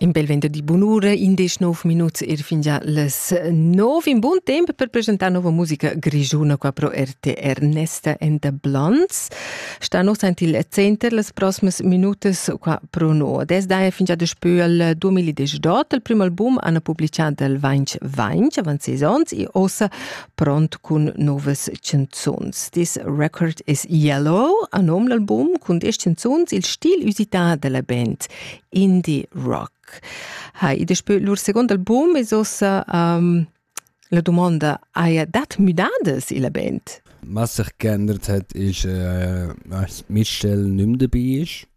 In bel vento di bunura, indesch nov minuts er fingia les nov. In bun tempo per presentar nova musica grigiuna qua pro RTR Nesta and the Blondes. Sta nos ant il center las prossimas minutas qua pro no. Des dai fingia despö al 2018 il primo album hanno pubblicato il Vainch Vainch avant sesons e ossa pront cun novas canzuns. This record is yellow a nom l'album cun diesch canzuns, il stil usità della band indie rock. Ha, ed es lur second album es ossa um, la domanda, haja dat müdadas illa band? Was sich geändert hat, ist, äh, dass Mitchell nicht mehr dabei ist.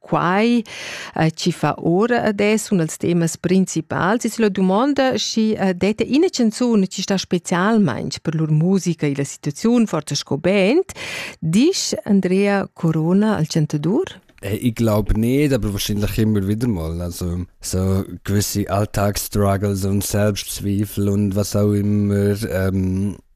quai eh, chi fa ora adesso un als temas principals. Es la dumonda, schi eh, dete ina canzun chi sta specialmaing per lur musica e la situaziun, forza sco band, disch Andrea Corona al chantadur? Äh, ich glaube nicht, aber wahrscheinlich immer wieder mal. Also so gewisse Alltagsstruggles und Selbstzweifel und was auch immer ähm,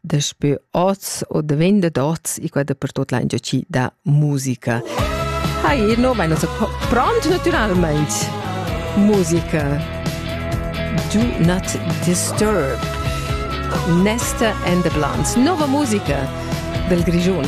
Daspö hoz o daven dad hoz i qua dapertot laingia chi da musica. Hai, no, ma nosa pront natüralmaing. Musica. Do not disturb. Nesta and the Blondes. Nova musica del Grigiun.